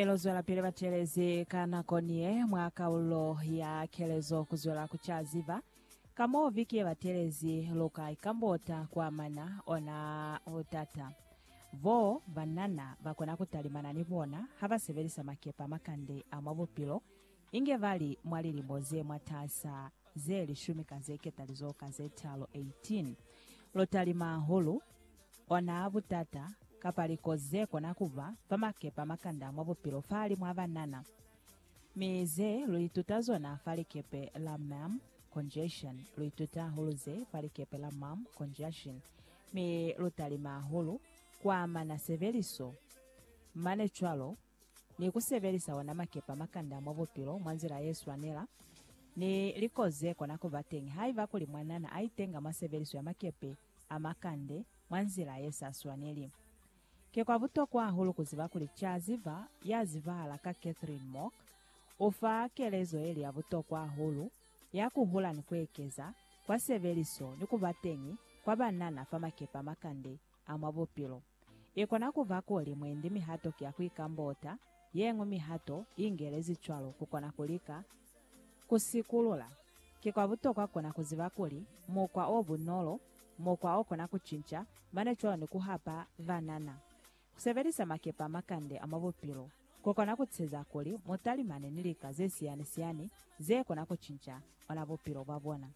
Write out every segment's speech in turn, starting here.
Mi lu zwelapili batelezi ka nako niye mwa Kaulo ya Kelezo kuzwela ku ca ziba ka mo viki ye batelezi lu ka ikambota ku amana ona butata bo banana ba kona ku talimana ni bona ha ba sebelisa makepe a makande a mwa bupilo, inge ba li mwa lilimo ze mwatasa ze lishumi ka ze ketalizoho ka ze talu, 18. Lu talima hahulu. Ona butata, kapa likozi ze kona ku ba, fa makepa a makanda mwa bupilo fahalimu a banana, mi ze lu ituta zona fa likepe la Maam, congestion, lu ituta hahulu ze fa likepe la Maam, conjunction, mi lu talima hahulu ku amana sebeliso, mane cwalo, ni ku sebelisa ona makepa a makanda mwa bupilo mwa nzila ye swanela, ni likozi ze kona ku ba teñi haiba kuli mwanana a itenga mwa sebeliso ya makepe. a makande mwa nzila ye sa swaneli. Ki kwa butokwa hahulu ku ziba kuli c'a ziba ya zibahala ka Catherine Mock u fa kelezo ye li ya butokwa hahulu ya ku hula ni ku ekeza kwa sebeliso ni ku ba teñi kwa banana fa makepe a makande a mwa bupilo. I kona ku ba kuli mwendi mihato ki ya ku ikambota, ye ñwi mihato i ingelezi cwalo ku kona ku lika Ku sikulula, ki kwa butokwa kona ku ziba kuli mukwa o bunolo, mukwa o kona ku cinca, mane cwalo ni ku hapa banana. Ku sebelisa makepe a makande a mwa bupilo ku kona ku tsheza kuli mu talimane ni lika ze siyani-siyani ze kona ku cinca ona bupilo bwa bona.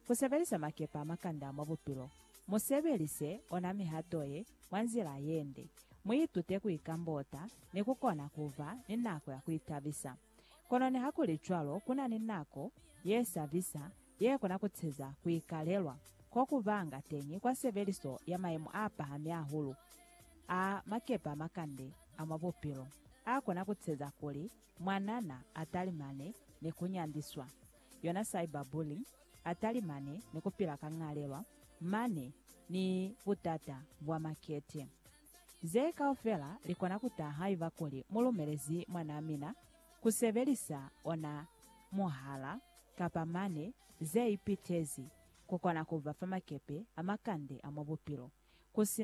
Ku sebelisa makepe a makande a mwa bupilo, mu sebelise ona mihato ye mwa nzila ye nde. Mu itute ku ikambota ni ku kona ku ba ni nako ya ku itabisa. Kono nihakulicwalo, kuna ni nako yesabisa yekona kuceza kuikalelwa kokubanga teñi kwa sebeliso ya mayemo apahami ahulu a makepe amakande a mwa bupilo, akona kuceza kuli mwanana atalimane ni kunyandiswa, yona cyberbullying, atalimane ni kupila ka ñalelwa mane ni butata bwa makete. Ze kaufela li kona ku taha haiba kuli mu lumelezi mwanaa mina ku sebelisa ona muhala kapa mane ze ipitezi ku kona ku ba fa makepe a makande a mwa bupilo ku si